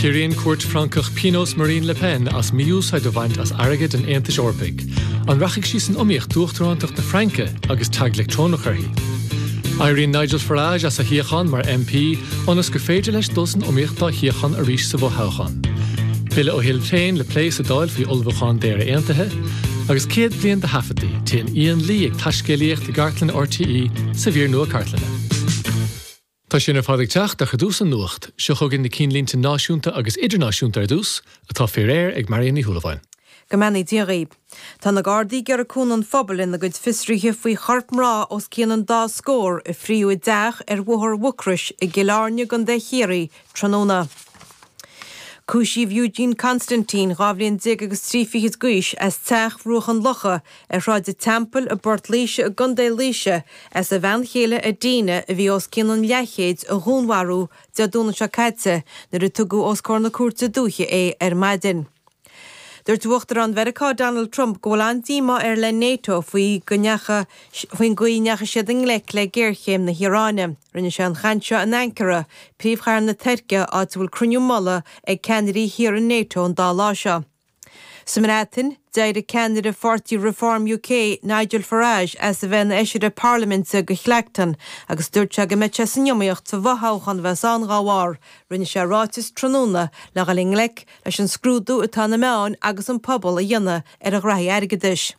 Ciorraíonn cúirt Francach pionós Marine Le Pen as mí-úsáid a bhaint as airgead an Aontais Eorpaigh. An rachaidh sí san iomaíocht d'uachtarántacht na Fraince agus tag leictreonach uirthi? Éiríonn Nigel Farage as a shuíochán mar MP ionas gur féidir leis dul san iomaíocht dá shuíochán arís sa bhfothoghchán. Bille ó Shinn Féin le plé sa Dáil faoi ullmhúchán d'Éire Aontaithe, agus 100 bliain de thaifid, téann Ian Lee ag taiscéalaíocht i gcartlann RTÉ sa mhír nua cartlainne. Tá sin ar fad ag teacht ach i dtús an nuacht, seo chugainn na cinnlínte náisiúnta agus idirnáisiúnta ar dtús, atá faoi réir ag Marion Ní Shúilleabháin. Go mbeannaí Dia dhaoibh. Tá na Gardaí ag iarraidh cúnamh an phobail ina gcuid fiosruithe faoi chorp mná os cionn an dá scór a fríodh i dteach ar Bhóthar Mhucrois i gCill Airne i gContae Chiarraí tráthnóna. Cúisíodh Eugene Constantine, dhá bhliain déag agus trí fichid d'aois, as Teach Bhruach an Locha, Ar Shráid an Teampaill i bPort Laoise i gContae Laoise, as a bhean chéile Adina, a bhí os cionn an leathchéid, a dhúnmharú Dé Domhnaigh seo caite nuair a tugadh os comhair na cúirte dúiche é ar maidin. Dúirt Uachtarán Mheiriceá Donald Trump go bhfuil an-díomá air le Nato faoin gcaoi a ndeachaigh siad i ngleic le géarchéim na hIaráine. Rinne sé an chaint seo in Ankara, príomhchathair na Tuirce, áit a bhfuil cruinniú mullaigh ag ceannairí thíortha Nato an dá lá seo. Sa mBreatain, d'éirigh ceannaire pháirtí Reform UK, Nigel Farage, as a bheith ina fheisire parlaiminte do Clacton agus dúirt sé go mbeadh sé san iomaíocht sa bhfothoghchán a bheas ann dá bharr. Rinne sé ráiteas tráthnóna le dhul i ngleic leis an scrúdú atá na meáin agus an pobal a dhéanamh ar a ghnaithí airgeadais.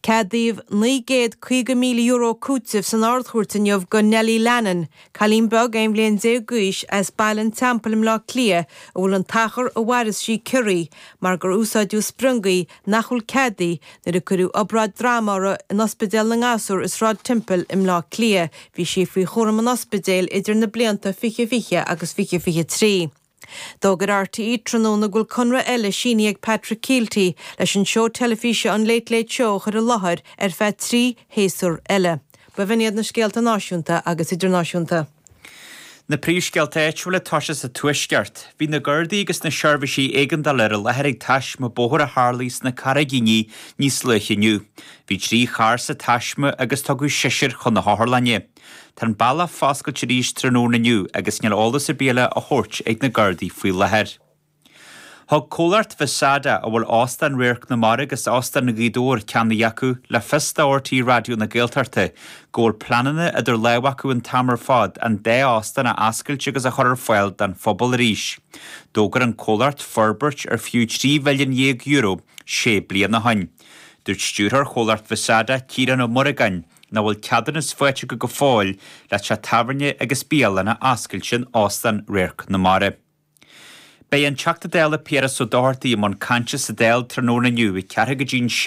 Ceadaíodh €950,000 cúiteamh san Ard-Chúirt inniu do Nellie Lennon, cailín beag aon bhliain déag d'aois as Baile an Teampaill i mBleá Cliath a bhfuil an t-achar a mhaireas sí ciorraithe mar gur úsáideadh spriongaí nach bhfuil ceadaithe nuair a cuireadh obráid droma uirthi in Ospidéal na nGasúr i Sráid Temple i mBleá Cliath. Bhí sí faoi chúram an ospidéil idir na blianta 2020 agus 2023. D'fhógair RTÉ tráthnóna go bhfuil conradh eile sínithe ag Patrick Kielty leis an seó teilifíse an Late Late Show a chur i láthair ar feadh trí shéasúr eile. B'in iad na scéalta náisiúnta agus idirnáisiúnta. Na príomhscéalta áitiúla ag tosú sa Tuaisceart. Bhí na Gardaí agus na seirbhísí éigeandála ar an láthair ag taisme bóthair a tharlaigh sna Carraigíní níos luaithe inniu. Bhí trí charr sa taisme agus tugadh seisear chun na hotharlainne. Tá an bealach foscailte arís tráthnóna inniu agus níl eolas ar bith eile á thabhairt ag na Gardaí faoi láthair. Thug comhlacht Vesada, a bhfuil Óstán Radharc na Mara agus Óstán Ghaoth Dobhair ceannaithe acu, le fios do RTÉ Raidió na Gaeltachta go bhfuil pleananna idir lámh acu an t-am ar fad an dá óstán a oscailt agus a chur ar fáil don phobal arís. D'fhógair an comhlacht forbairt ar fiú €3 mhilliún déag é sé bliana ó shin. Dúirt stiúrthóir chomhlacht Vesada, Ciarán Ó Muireagáin, Nach bhfuil ceadúnas faighte acu go fóill le teach tábhairne agus bialann a oscailt in Óstán Radharc na Mara? Beidh an Teachta Dála Piaras Ó Dochartaigh i mbun cainte sa Dáil tráthnóna inniu, 4 go dtí 6,